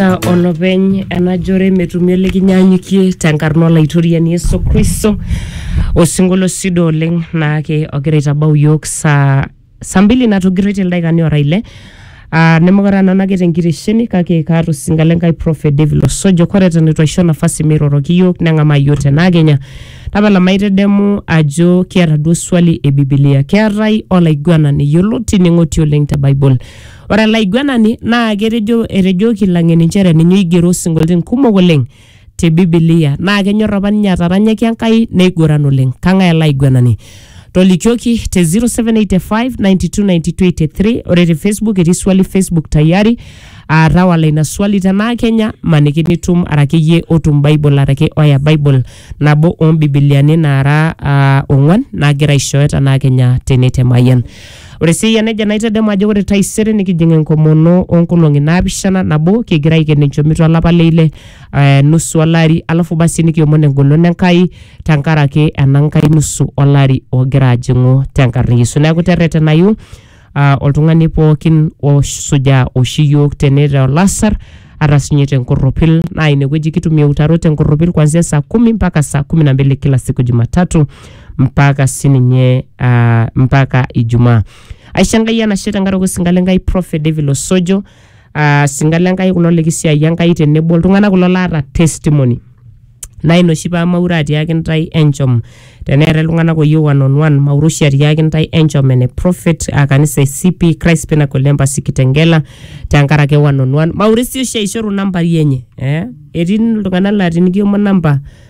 Etaa olopeny ena jore metumi olikinyanyukie tenkarna olaitoriani Yesu Kristo osinkolio sido oleng naake ogira aitabau iyiook saa saa mbili natogirroitie ildaikani ora ile aa nemekure aa nanu ake tenkitesheni kake kaata osinka le Nkai Prophet David Osojo kore eton itu aisho nafasi meiroroki iyiook neng'amaa iyiook tena kenya. Tapala maitedemu ajo kiata duo swali e bibilia keetae olaiguanani yioloti neng'oti oleng te bible Ore olaiguanani naa ketejo etejoki Lang'eni nchere ninye oigero isinkolioitin kumok oleng te Bibilia naa kenyor apa ninye ataranyaki Enkai neiguran oleng. Kang'ae ele aiguanani? Tolikioki te 0785929283 ore te Facebook etii swali Facebook tayari aa tawala ina swali tenaa Kenya maniki nitum araki iyie otum Bible araki oya Bible nabo oo mbibiliani naara ah, ong'wan naagira aishooyo tenaa Kenya tene te Mayian. Ore sii eyia nejia naitadamu ajo ore taisere nikijing enkomono oonkolong'i naapishana nabo kigira aiken enchomito olapa le ile eh, nusu olari alafu basi nikiomon engolon Enkai tenkaraki ena nkae nusu olari ogira ajing'u tenkarna e Yesu. Neeku terretenayu ah, oltung'ani pookin osujaa oshi iyiok tene te olasar ata siinye tenkorropil naa inewueji kitumie eutarot tenkorropil kuanzia saa kumi mpaka saa kumi na mbili kila siku jumatatu mpaka sininye uh, mpaka ijumaa aisho enkai enashe tenkaraki osinka lenkai prophet david losojo uh, sinka lenkai kulo likisiai enkai tenebo iltung'anak kulo laata testimony naa ina oshi pamaure atiaki ntae enchom teneetae iltung'anak oyieu one on one maure oshi atiaki ntae enchom ene prophet uh, kanisa e cp christ pinnacle embassy kitengela tenkaraki one on one maure sii oshi aishoru nambai enye eh? etii iltung'anak laa tinikiomon namba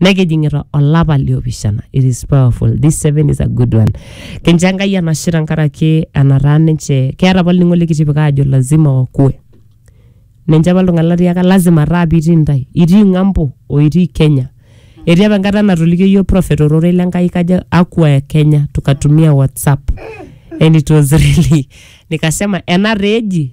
nekijing'ita olapa liopishana it is powerful this seven is a good one kincho enkai enashe tenkaraki enataa ninche keeta apa olning'o likitipika ajo lazima wakue ninche apa iltung'anak latiaka lazima taa pitii intae itii ng'ambo o itii kenya etii apa enkata natolikio yiok prophet ororei lenkai kajo akwa ya kenya tukatumia whatsapp and it was really nikasema ena taa eji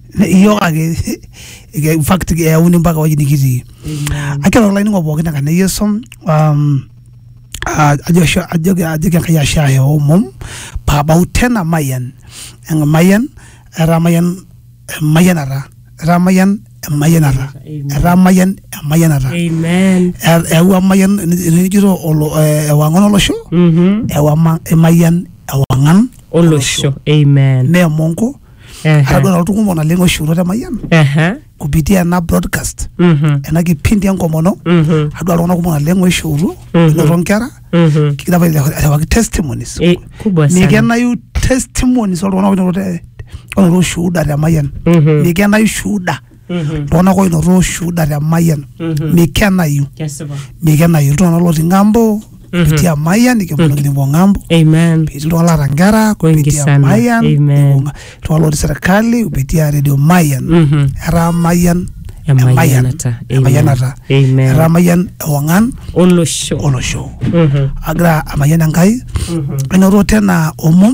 iyiok ake eh, in fact eyauni mpaka ewueji nikitii akira olainingo pookin enkarna e yesu um, ah, ajo ashe- ajoki ajoki enkai ashe ahe omom paabau tena mayian Eng- mayian etaa mayian emayianata etaa mayian emayianata Amen. etaa mayian emayianata amen Er- eewua mayian enijito ewang'an olosho Mhm. ewa ma- emayian ewang'an olosho amen neemonko Ehe. atadua nalotu kumok naleng oishurutua te mayian Ehe. kupitia ena broadcast Mhm. ena kipindi enkomono Mhm. adua iltung'anak kumok naleng oishurutua Mhm. enoto nkera Mhm. kigira apa airriwaki testimonies Eh, kubwa sana. mikenayu testimonies oltung'anak oinoto te- oinoto shuhuda te mayian Mhm. mikenayu shuhuda iltung'anak oinoto ushuhuda te mayian mikenayu kesipa mikenayu iltung'anak lotii ng'ambo etii amayian nikiponu nikipuo ng'ambo amen etii iltung'anak laata nkera Wengi kupitia sana. mayian Amen. nibung'a. iltung'anak lotii serikali kupitia redio mayian Mhm. etaa mayian Emayianata. Amen. emayianata Amen. etaa mayian ewang'an olosho olosho Mhm. agira amayian enkai enoto tena omom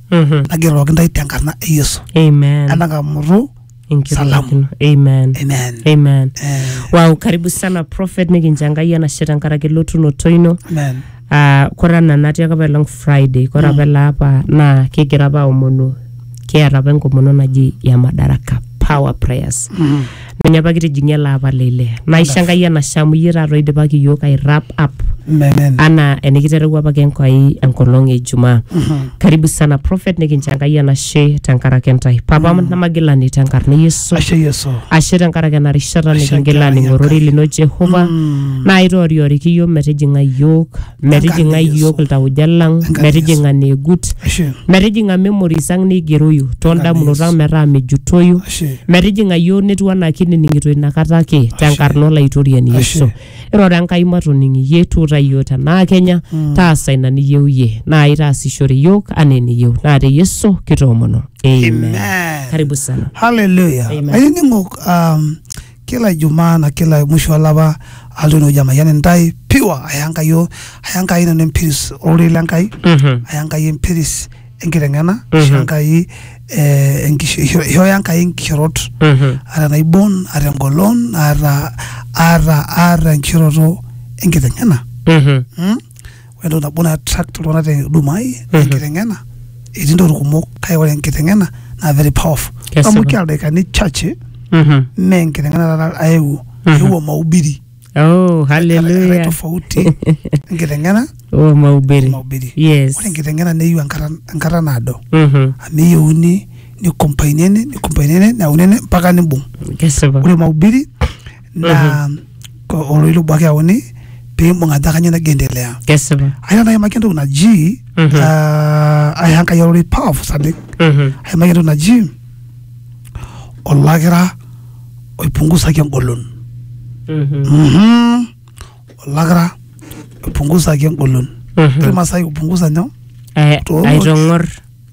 Mhm. nageroki ntae tenkarna e yesu Amen. entang'amutu Enkirorokino. Amen. amen Amen. Eh, Wow, karibu sana prophet nikincho Enkai enashe tenkaraki elotunoto ino. amen Ah, kore ena natii ake apaelong Friday, kore apa ele apa naa kigira apa aomonu kiata apa enkomono naji ya Madaraka Power Prayers. ninye apa kitijing'ie ele apa le ile naisho enkai enashe amu iyie taata oidipaki iyiook ai wrap up Amen. anaa enikiterewua apake enkai enkolong e ijumaa karibu sana prophet nikincho enkai enashe tenkaraki intae papa namagilani tenkarna e yesu Ashe Yesu. ashe tenkaraki ena rishata Ashe nikingila enkerai aning'orori Enkai. lino jehova naa itoorioriki iyiook metijing'a iyiook metijing'a iyiook iltauja lang metijing'a neegut metijing'a memories ang neigeroyu toondamunot ang metaa mejutoyu metijing'a iyiook netiu anaa kinining'ito inakata ake tenkarna olaitoriani yesu iroro enkai matoning iyie tuuta iyiook tenaa kenya taasa ina niyieu iyie naa itaasishore iyiook anaa eniyieu naa te yesu kitoomono amen Amen. karibu sana Hallelujah. Amen. Ainining'ok um, kila ijumaa na kila musho olapa alotu enewueji amayian intae pure aya Enkai o aya Enkai nanu empiris ororei le Enkai Mhm. aya Enkai empiris enkiteng'ena Mhm. isho Enkai eh, enkisho- isho- ishooyo Enkai inkishorot Mhm. aata enaibon aata engolon aata aata aata enkishoroto enkiteng'ena Mhm. mm? ore entoki nabo nai attract iltung'anak te huduma ai naa Mhm. enkiteng'ena etii ntokitin kumok kake ore enkiteng'ena naa very powerful Kesipa. amu kia ildaikani chache Mhm. mee enkiteng'ena taata aewuo Mhm. eewuo mahubiri Oh, Erai hallelujah. tofauti enkiteng'ena Oh, o mahubiri. mahubiri Yes. ore enkiteng'ena neyieu enkata enkata naado Mhm. amu eyieuni nikompainene nikompainene neyauni ene mpaka nibung Kesipa. ore mahubiri naa ko- oloito obo ake eyauni pee imbung ajo kanyoo nagira endelea kesipa aina naimaki entoki naji Mhm. ah, ai Enkai ororei powerful saleng Mhm. aimaki entoki naji olakira oipungusaki engolon Mhm. Mhm. olakira oipungusaki engolon Mhm. ilmasai kupungusa nyoo Eh, Toong'or. aitong'or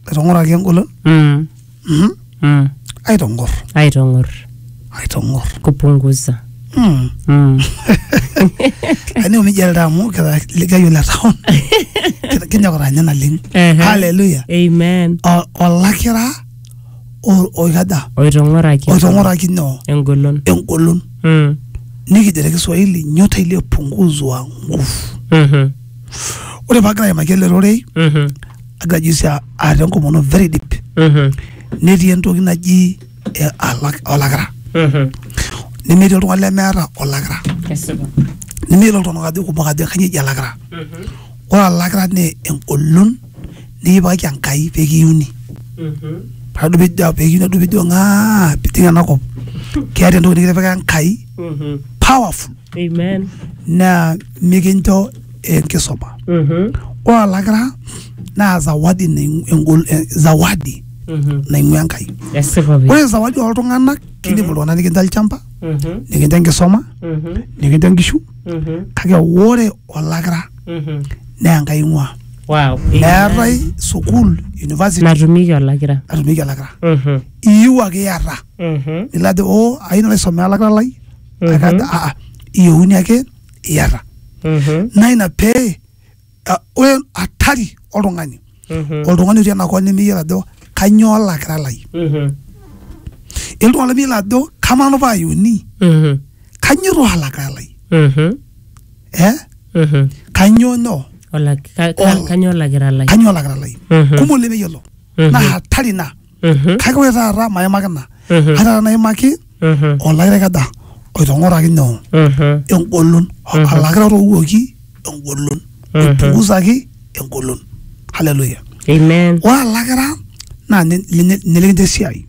aitong'oraki engolon Mm. Mhm. mm. aitong'or aitong'or aitong'or kupunguza Mm. mm. aningo nejia ltaa amu kira likayo le town Kira- kinyok tanya naleng Ehe. haleluya amen O- olakira o- oikaja oitong'oraki oitong'oraki nyoo engolon engolon mm. nikijo te kiswahili nyota iliyopunguzwa nguvu Mhm. ore paagira aimaki ele rorei Mhm. agira juzi a- aata enkomono very deep Mhm. netii entoki naji eh, alak- olakira Mhm. nemetii oltung'ani lemeeta olakira Kesipa. nemeyiolo iltung'anak ajo kumok ajo kanyio eji alakira Mhm. ore alakira naa engolon nikipikaki enkai pekiuni Mhm. paadu pijo pekiuni adu pijo ng'aa piting enakop keeta entoki nikitipika enkai Mhm. powerful Amen. naa mikincho enkisuma Mhm. ore olakira naa zawadi naing- engol- eh, zawadi Mhm. naing'ua enkai Esipa pi. ore zawadi ooltung'anak kidim iltung'anak nikincho olchamba Mhm. nikincho enkisuma Mhm. nikincho nkishu Mhm. kake ore olakira Mhm. naa enkai ing'ua Wow. meetae sukuul university Natumieki olakira. natumieki olakira Mhm. iyieu ake iyata Mhm. nilo ajo o ayieu nalo aisomea olakira lai Mhm. kakaata aa iyieuni ake iyata Mhm. naa ina pee ah, ore hatari oltung'ani Mhm. oltung'ani otii enakop nemeyiolo ajo kanyoo olakira lai Mhm. iltung'ana lemeyiolo ajo kamanu paayuni Mhm. kanyoo too olakira lai Mhm. eh Mhm. kanyoo nyoo Olak- ka- ka- Ol- Kanyoo olakira lai? kanyoo olakira lai Mhm. kumok lemeyiolo Mhm. naa hatari ina Mhm, kake ore taata maimaki ina mhm, ai taata naimaki mhm, olairekeda oitong'oraki nyoo mhm, engolon Mhm. alakira otowuoki engolon Mhm. oipungusaki engolon haleluya Amen. ore alakira naa ninye- ninye ninye likincho esiai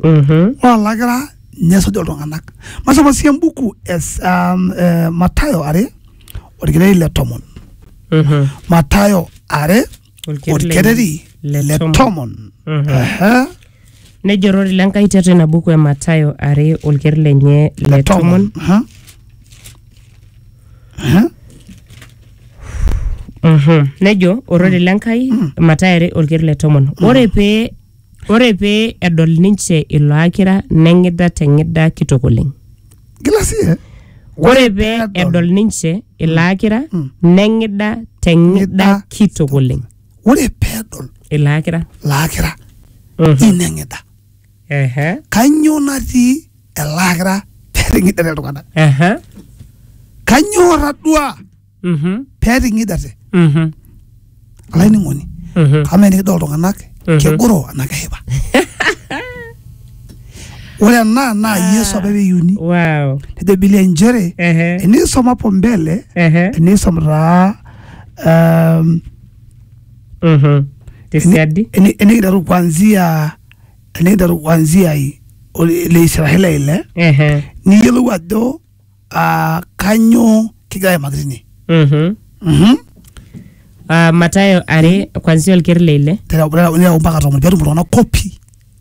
Mhm, ore alakira ninye esuj iltung'anak masoma sii embuku es um, eh, matayo are orkirei le tomon mhm, matayo are olkereri le le tomon. tomon Mhm. Aha. nejo orori le Nkai tiatua ina buku e Mathayo are olkereri lenye le le tomon tomon Aha. Aha. Mhm. nejo orori le Nkai Mathayo are olkereri le tomon ore pee ore pee edol ninche ilo akira neng'ida te ng'ida kitok oleng Gila sii eh? Ore pee Edol. edol ninche ilaakira neng'ida te ng'ida Ng'ida. kitok oleng. Ore pedol Ilaakira. laakira Mhm. ineng'ida. Ehe. Kanyoo natii elaakira peting'idare iltung'anak? Ehe. Kanyoo atadua Mhm. pee eting'idate Mhm. olainining'oni Mhm. amaa enikidol iltung'anak Mhm. kegoro anaa keshipa ore ena naa Ah. yesu apa eyiuni Wow. nejo bilia nchere Ehe. enisom hapo mbele Ehe. enisom taa um, Mhm. Tesiadi. eni- enikiteru kuanzia enikiteru kuanzia i- ole- le israeli ile Ehe. niyiolou ajo uh, kanyoo kigira aimaki tine Mhm. Mhm. Ah, Mathayo are kwanzia olker le ile Tereu- tereu- tereu mpaka tomon petum iltung'anak kopi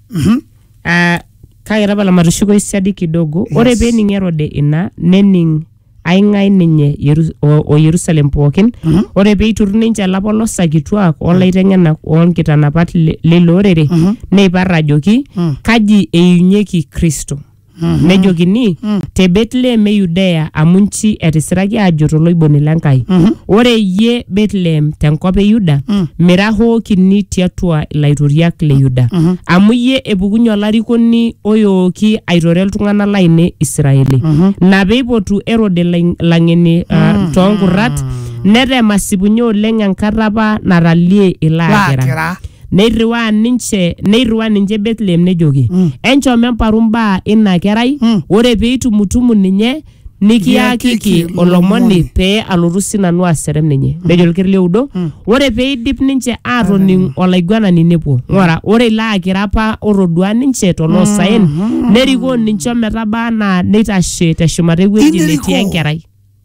Mhm. Ah, kake tapala matushuko isiadi kidogo Yes. ore pee ening erode ina nening aing'ae ninye Yeru- o o yerusalem pookin Mhm. ore pee eiturru ninche ilapolosa kituak olaiteng'enak oonkitanapat le- leilo orere Mhm. neipar ajoki Mm. kaji eiunyeki kristo nejokini te Betlehem e Yudea amu nchi etisiraki aajo toloiboni le Nkai ore iyie Betlehem tenkop e Yuda mira hoo kini tiatua ilaitoriak le Yuda amu iyie epukunye olarikoni oyooki aitore iltung'anak laine Israeli ina peipotu Erode ilaing- ilang'eni ah, toonkurrat netem asipunye oleng enkata apa natalie ilo akira Laakira. Neirriwaa ninche neirriwaa ninche Bethlehem nejoki, Mm. enchom emparu mbaa ina kerai, Mm. ore pee itumutumu ninye nikiakiki Nikiakiki olomoni olomoni. pee alotu sinanu aserem ninye. Nejo ilkir lioudo, ore pee eidip ninche aatoning olaiguanani nepuo. Ng'ura, ore ilo akira apa otodua ninche toloosaen, nerikoo ninche ometabaa anaa neitashe teshumata ewueji Inerikoo. netii enkerai.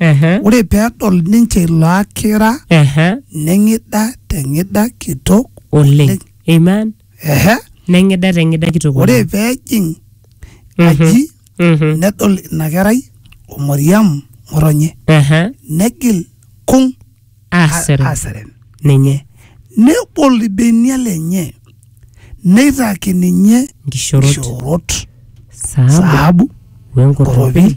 Ehe. Ore pedol ninche ilo akira Ehe. neng'ida teng'ida kitok Oleng. Amen. ehe Neng'ida teng'ida kitok ore oleng. pejing Mhm. aji Mhm. nedol ina kerai o Mariam ng'otonye Ehe. negil kung Asere. aseren Ninye. nebol ilbenia lenye neitaki ninye Nkishorot. nkishoorot Saabu. saabu Wenkoropi.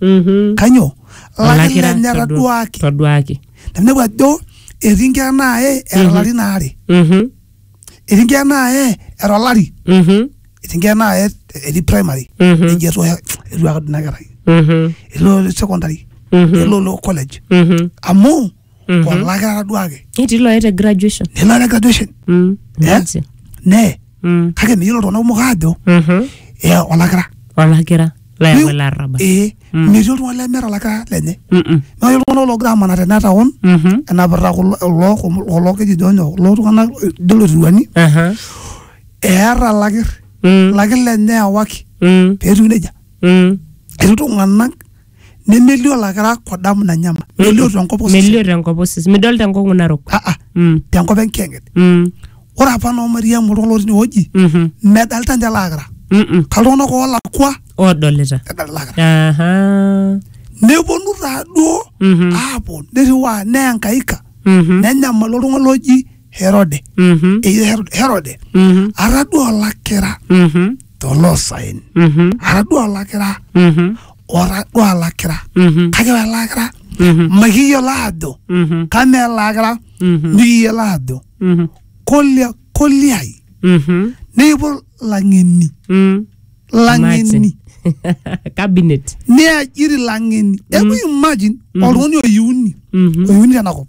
Mhm. kanyoo Olakira lakira ninye todua- etaduaaki toduaki teninepu ajo etii nkera naaye era larin aare Mhm. etii nkera naaye era olari Mhm. etii nkera naaye etii primary Mhm. eji etu etu akadu ina kerai Mhm. elo secondary Mhm. elo lo college Mhm. amu Mhm. olaki ataduaki Netii looya te graduation. nilo te graduation Mm. Eh? Imagine. nee Mm. kake meyiolo iltung'anak kumok aajo Mhm. ee olakira Olakira layau Meyieu- olarrabal. ee Mm. metii oltung'ani lemeeta olakira lenye Mm-mm. naa ore iltung'anak loogira amanaa tena taon Mhm. enapita kulo kulo- kulo keji jonyo kulo tung'anak ijo loturuani Aha. eeta lakir Mm. lakir lenye ewaki Mm. peetiu nejia Mm. etii iltung'anak nemelio olakira kodamu nanyama melio tenkop osesen melio tenkop osesen midol tenkong'u narok Ah, ah, Mm, tenkop enkiyang'et mm, ore apa noo mariamu oltung'ani lotii inewueji mhm, medalta ninche lakira mm, mm. kaltung'anak oolakua odolita edalta lakira Aha. neponu taaduo Mhm, aapuo nirriwaa neenkaika mhm, nenyamalu oltung'ani loji herode mhm, eji Herode- herode mhm, ataduo olakira mhm. toloosaen Mhm. atadua olakira Mhm. otadua olakira Mhm. kake ore ele akira Mhm. makiyiolo aajo Mhm. kamaa ele akira Mhm. mikiyiolo aajo Mhm. kolia koliai Mhm. nepuo lang'eni Mm. lang'eni Cabinet. neajiri lang'eni eku imagine oltung'ani oyiuni Mhm. oyiuni tenakop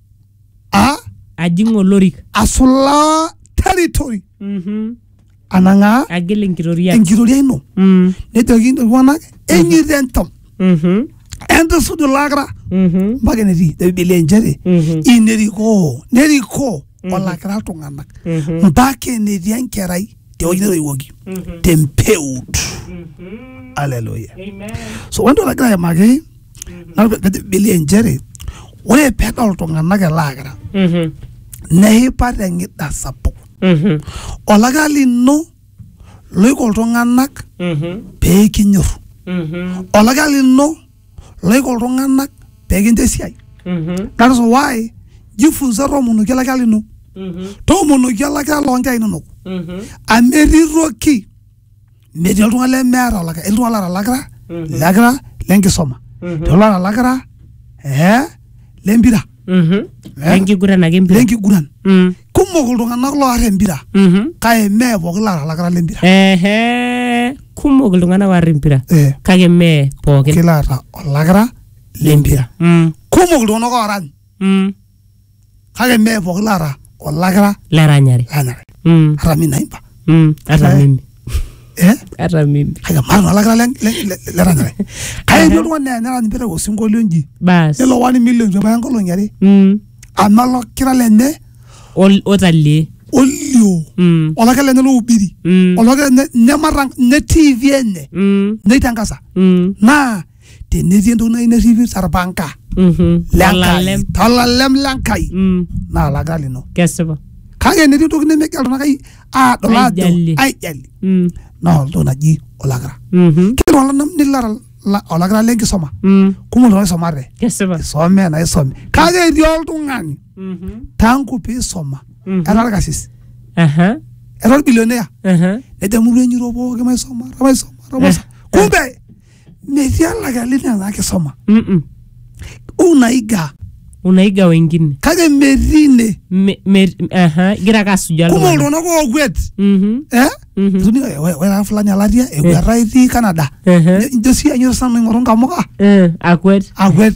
a ajing olorik asulaa territory Mhm. anang'aa agil enkitoria enkitoria ino Mm. nejoki iltung'anak enyita entam Mhm. entisuj ilakira Mhm. mpaka enetii te bibilia inchere Mhm. inerikoo nerikoo olakira iltung'anak Mhm. mpaka enetii enkerai tewueji netoiwuoki Mhm. tempeut Mhm. aleluya Amen. so ore entoki nagira aimaki Nalo pe- pejo Bilia inchere ore pedol iltung'anak ele akira Mhm. neipa teng'ida sapuk Mhm. olakira lino loiko iltung'anak Mhm. pee kinyor Mhm. olakira lino loiko iltung'anak pee kincho esiai Mhm. that is why jifunza toomonoki olakira lino Mhm. toomonoki olakira loonkera inonok Mhm. amu etii toki metii oltung'ani lemeeta olakira etii iltung'anak loota olakira Mhm. ilakira lenkisoma Mhm. etii oloota olakira eh, lempira Mhm. Eh? Enkiguran ake empira. lenkiguran Mm. kumok iltung'anak loar empira Mhm. kake mee pooki loota olakira lempira Ehe. Kumok iltung'anak oar empira Eh, kake mee pookin. kila ata olakira lempira Mm. kumok iltung'anak oorany Mm. kake mee pooki laata olakira laranyare lanyare Mm, hata mi naimba mm, hata Eh. mimi eh hata mimi kake maata naa olakira le- le- le- leranyare kake etii oltung'ani naa nerany piteru osinkolio nji bas nelo wani milioni tebaya nkolong'i are Mm, amu olakira lenye ol- otalie olio Mm, olakira lenye loubiri mm, olakira lenye nemarang ne tv enye mm, neitangasa mm. naa tenetii entoki nayieu nerripi torpanka Mhm. lenkai Olalem. tolalem lenkai Mm. naa olaka lino Kesipa. kake enetii entoki nemegira iltung'anak ai- aadol aajo Aijalie. aijali Mm. naa oltoki naji olakira Mhm. kila olanam nilara la- olakira lenkisoma Mm. kumok iltung'anak isomate Kesipa. isome na isome kake etii oltung'ani Mhm. tangu piisoma Mhm. etaa orkasis Aha. etaa orbilionea Aha. nejo murua enyiro pooki maisoma maisoma maisoma kumbe metii olakali nena kisoma Mm-mm. unaiga unaiga wengine kake metii ine Me- me- aha, igira ake asujaa kumok iltung'anak. iltung'anak ookwet Mhm, eh? mhm. Etuni, "Oi, oi, ore fulani alatia ekueta itii Canada Ehe. njo sii anyor sana aing'oru nkamuka Eh, akwet akwet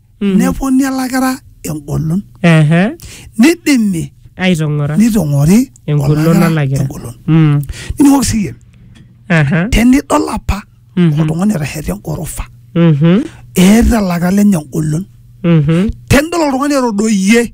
Mm. neponi elakira engolon Ehe. nidimi aitong'ora nitong'ori engolon olakira olakira engolon Mm. nining'oki siyie Aha. tenidol apa Mhm. oltung'ani etasheta engorofa Mhm. eeta elaka lenye engolon Mhm. tenidol oltung'ani etodoyie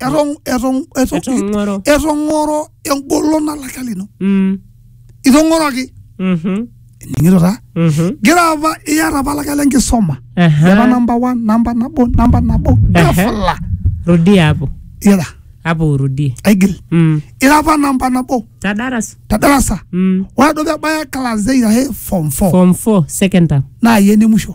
etong- etong- etong- Etong'oro. etong'oro engolon nalaka lino Mm. itong'oroki Mhm. ening'ito taa Mhm. gira apa iyata apa laka le nkisoma Aha. ira namba one namba nabo namba nabo Aha. gafla rudia hapo ira hapo urudie aigil mm. ira apa namba nabo ta darasa te darasa mm. ore duo pebaya class eight ahe form four form 4 second term naa yie ene musho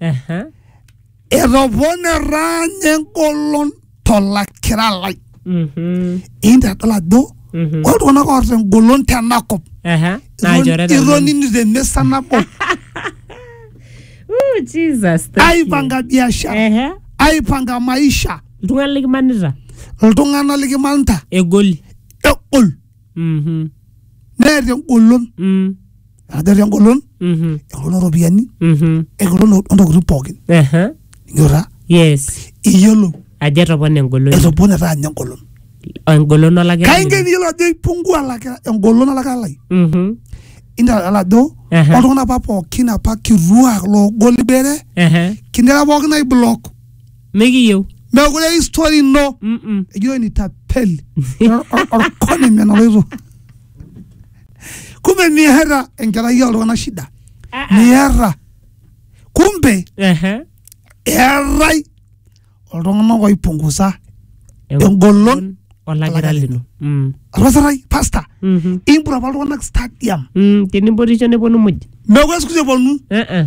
Aha. etoponera ninye engolon tolakira lai Mhm. intadol ajo Mhm. ore iltung'anak oota engolon tenakop Aha. Naa ilchoreta linono. itonini temisa nabo Ooh, Jesus, thank you. aipanga biashara Ehe. aipanga maisha Iltung'anak likimanita iltung'anak likimanita egoli egol Mhm. neeta engolon Mm. ajo etaa engolon Mhm. engolon ooropiyiani Mhm. engolon o- ontokitin pookin Aha. inyora yes iyiolo ajo etopona engolon etopone etaa ninye engolon engolon olakira kainken iyiolo ajo ipungua alakira engolon alakira lai Mhm. indala ajo Aha. oltung'anak apa pookin apa kituak loogol ibere Aha. kindera pookin aiblock mikiyieu mekure histori ino Mm-mm. ejo nitapeli orkoni menaloito kumbe miata enkerai oltung'anak shida Ah, ah. miata kumbe Ehe. eetai oltung'anak oipungusa Engolon. olagira lino Mm. rasarai pasta Mhm. impura apa iltung'anak stadium Mm, tenibotisho neponu muj mekure siku hizi eponu Eh, eh.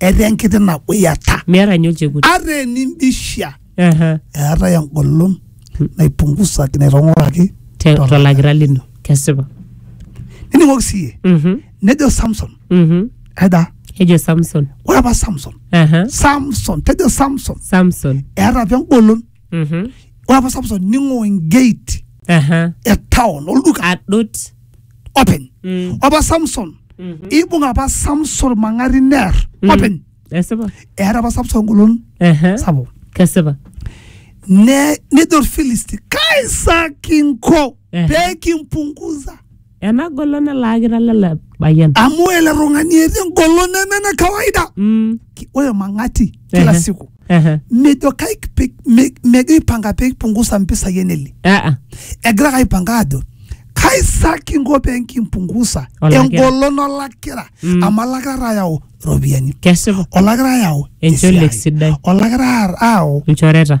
etaa enkiti naguyata miata ninye olchekut ata enindishia Aha. eetae engolon naipungusaki naitong'oraki Te- tolakira lino kesipa nining'oki siiyie Mhm, nejo samson mhm. aida ejo samson ore apa samson Aha. samson tejo samson samson eeta apa engolon Mhm. ore apa samson ning'oo engate Aha. e town olduka Adut. openy Mm. ore apa samson Mhm. ibung apa samson mang'ari neer Mm. openy Esipa. eeta apa samson engolon Aha. sapuk Kesipa. Ne- nejo orfilisti kaisa kinko Ehe. pee kimpunguza ena golon elaakita lele payian amu ore ele tung'ani etii engolon neme ene kawaida Mm, Ki- ore mang'ati kila Ehe. siku ehe. mejo kaik pe- me- megira aipanga pee ipungusa mpisai eneli Ah, ah. egira ake aipanga ajo kaisa kinko pee nkimpungusa Olakira. engolon olakira Mm. amu olakira taa ayau iropiyiani kesipa olakira ayau Enchole esiai. sidai. olakira ayau ilchoreta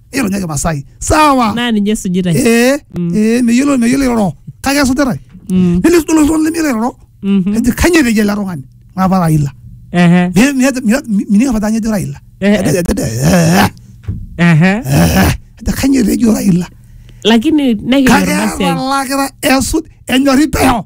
ironyaki masai sawa naa ninye esujitae ee Mm. ee meyiolo meyiolo iroro kake esujitae Mm, nelis duo oltung'ani lemeyiolo iroro mhm. eji kanyoo etejo ele tung'ani ng'apa raila Ehe, Mi- mi- mi- mining apa ajo ejo raila Eh, Ejo- ejo- ejo- eh, ehe. eh, ejo kanyoo etejo raila lakini kake nekijo etalakita esuj enyorri peo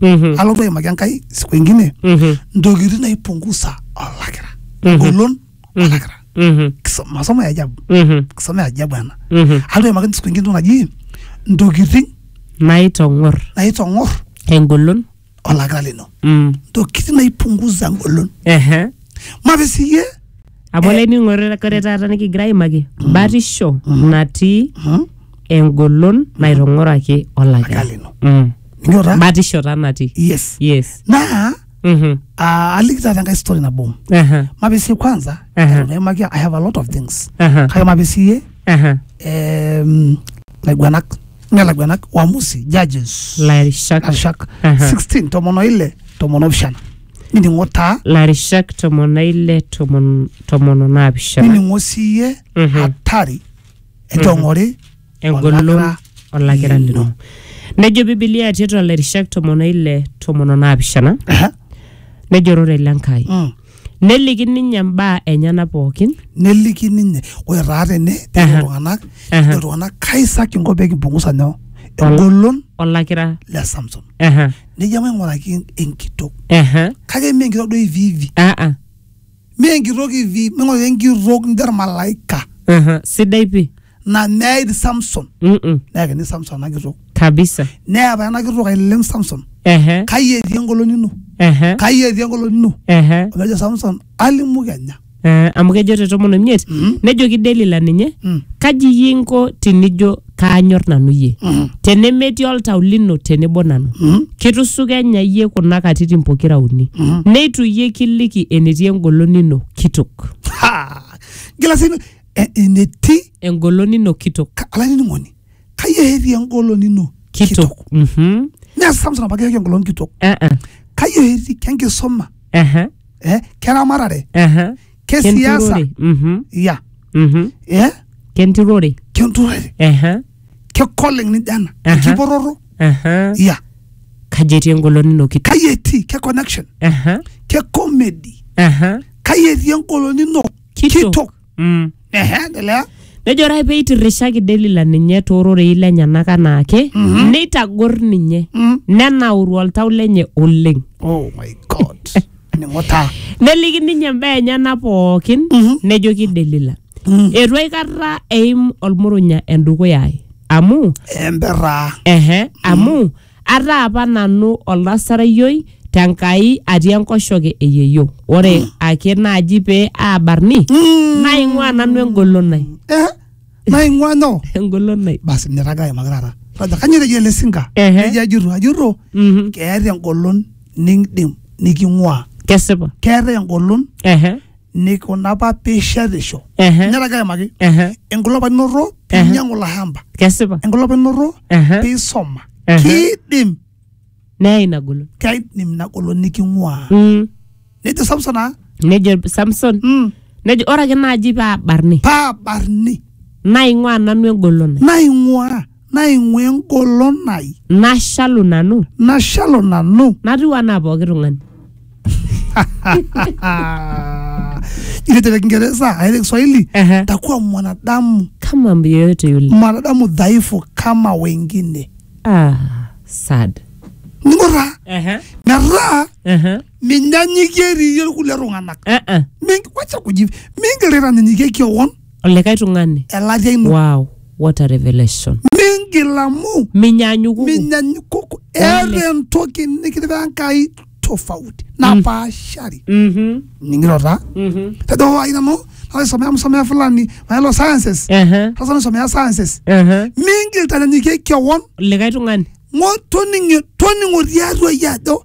Mhm. alotu aimaki enkai siku ingine Mhm. ntokitin naipungusa olakira Mhm. golon Mhm. olakira Mhm. Kiso- masomo ya ajabu Mhm. masomo ya ajabu ena Mhm. alotu aimaki siku ingine entoki naji ntokitin naitong'or naitong'or engolon olakira lino Mm. ntokitin naipungusa engolon Ehe. mape siyie amu olainining'ore kore taata nikigira aimaki batisho natii engolon naitong'oraki olaka Olaka lino. Mm. ninyo taa batisho taa natii yes yes naa Mhm. ah, aliki taata enkae story nabo Aha, mape siyie kwanza Aha. eton aimaki i have a lot of things aha, kake mape siyie aha. em, laiguanak me laiguanak waamusi judges lairishak arishak Aha. 16 tomon oile tomon opishana nining'o taa larishak tomon na ile tomon tomon o naapishana nining'o siiyie Mhm. hatari entong'ori engolon olakira olakira lino. lino nejo bibilia tiatua lairishak tomon ile tomon o naapishana Aha. nejo ororei le nkai Mm. neliki ninye mbaa enyena pookin neliki ninye ore taa tene Aha. ejo iltung'anak Aha. ejo iltung'anak kaisaki inko pee kimpungusa nyoo engolon olakira le samson Aha. nejo maing'uraki enkitok Aha. kake mee enkitok duo hivi hivi Ah, ah. mee enkitok hivi maing'uraki enkitok nijo ormalaika Aha. Sidai pi. na meid Samson Mm-mm. neyakini Samson ena kitok Kabisa. neya apa ena kitok ailem Samson Ehe. kai etii engolon ino Ehe. kai etii engolon ino Ehe. omejo Samson alimu kenya Ah, amu kejo te tomon omiet Mhm. nejoki delila ninye Mm. kaji iyie inko tinijo kaanyor nanu iyie Mhm. tenemetii oltau lino tenebo nanu Mhm. kitusukenya iyie kuna katitin pokira uni Mhm. neitu iyie kiliki enetii engolon ino kitok Ha! gila sii eh, enetii engolon ino kitok ka- olainining'oni kai eherie engolon ino kitok Mhm. neas samson apa keherie engolon kitok Ah, ah. kai eherie kenkisoma Aha. eh, keramatare Aha. kesiasa Kenturore. Mhm. ya Mhm. eh, Kenturore. kenturore Aha. kekoleng nijo ena Aha. kipororo Aha. ya Kaji etii engolon ino kiti? kai etii ke connection Aha. ke comedy Aha. kai etii engolon ino Kitok. kitok Mm. Ehe, endelea. nejo ore ake pee eitirrishaki delila ninye toororei lenyenak anaake neitagor ninye Mm. nenauru oltau lenye oleng Oh my God. Ning'o taa. neliki ninye imbaa enyena pookin Mhm. nejoki delila Mm. eitu aikata eim olmurunya endukuya ai amu Embera. ehe amu Ataa apa nanu oldasareyioi te Nkai atii enkoshoke e yeyio. Ore ake naaji pee aabarni, naing'uaa nanu engolon ai. Eh, naing'ua nyoo? Engolon ai. Basi nirraga aimaki taata. Roger, kanyoo etejo ele sinka? Ehe. Ejo ajurru, ajurru, Mhm. keeta engolon nikindim niking'uaa. Kesipa. Keetae engolon Ehe. nikuna apa piishetisho Ehe. nyoraki aimaki Ehe. enkulopakinoto piinyiang'u ilo shamba kesipa enkulopakinoto Ehe. piisoma Ehe. kiidim neya ina golon kaidim ina golon niking'uaa Mm. nejo samson aa nejo samson mm, nejo ore ake naaji paa barni paa barni naing'ua nanu engolon ai." naing'uaa naing'ua engolon ai nashalu nanu nashalu nanu natiu anaa pooki tung'ani ile te Kiingereza aile Kiswahili Ehe. takuwa mwanadamu kama mtu yeyote yule mwanadamu dhaifu kama wengine ah, sad ning'ura Ehe, metaa ehe, minyanyikie iriyie kulie tung'anak eh, eh. Mingi- wacha kuji mingirira ninyikie kion olikae tung'ani elatia ino wow what a revelation mingil amu minyaanyukuku minyanyiku eeta entoki nikitipika Enkai tofauti napaashari Mhm, ning'iro taa mhm. tejo hoo ai nanu naisomea msomea fulani maelo sciences Ehe, sasa naisomea sciences ehe. mingil tanyanyikie kewon olikae tung'ani ng'o toning'o toning'o tiatua iyie ajo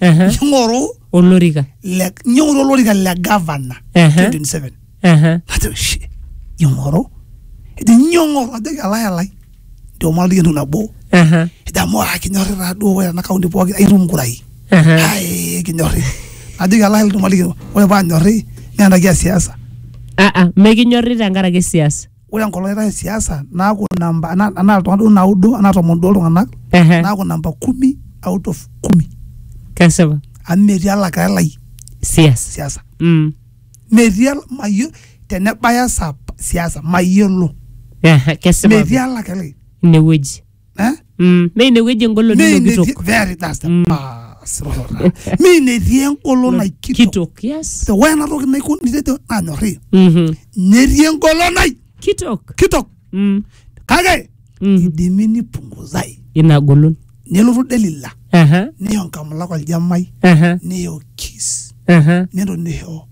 Ehe. ning'oru olorika le- ning'oru olorika le gavana Ehe. 27 Ehe. najo shi ing'oru ejo nyoo ng'oru ajoki alai alai ndio maana entoki nabo Ehe. ejo amu aa kinyorri taa duo ore ena kaunti pooki aitum nkurai Ehe. ai kinyorri najoki alai alai ore paa nyorri naa ena kia siasa Ah, ah, mekinyorri tenkaraki siasa ore enkolong naitae siasa naaku namba anaa anaa iltung'anak duo naudo anaa tomon duo iltung'anak Ehe. naaku namba kumi out of kumi Kesipa. amu metii olakira lai Siasa. siasa Mm. metii ol- mayo tenebaya saa p- siasa mayiolo Ehe. Kesipa. metii olakira lai Inewueji. eh? Mm, mee inewueji engolon Mee ino kitok inetii- very that's the Mm. pass, Rohora. Mee inetii engolon ai kitok kitok yes So, ore ena toki naiko nitejo nanyorri Mhm. netii engolon ai kitok kitok Mm, kake mm. idimi nipunguzai ina golon nelotu delila Aha, neyo nkamulak oljamai aha, neyo kis aha. nelo neyo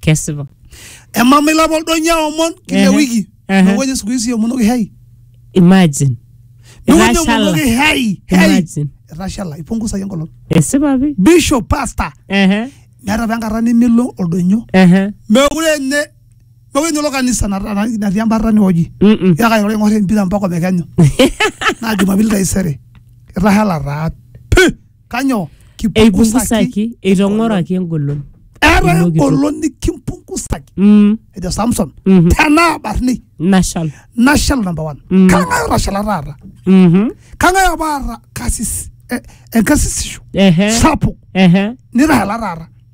kesipa emama ilapa oldonya omon kila Ehe, wiki ehe. nokoje siku hizi omonoki hei imagine nokoje Etashala. omonoki hei hei Imagine. etashala ipungusaki enkolong esipa pi bishop pastor Ehe, meeta apa enkata nemelo oldonyo ehe. mekure nye mekure nye ilo kanisa nata- na- natii embarta niwoji Mm-mm. yaka ilo ing'or empira mpaka omekenyu naa jumapili taisere etashala taa pi Kanyoo? Eipungusaki, eitong'oraki engolon. Eeta Ilo kitok. engolon nikimpungusaki. Mm, Ejo Samson, Mhm. tenaa barni nashal. nashal number one. Mm. Kang'ae otashala taata? Mhm. Kang'ae apa aata kasis eh, enkasisisho Ehe, sapuk ehe. nitashala taata?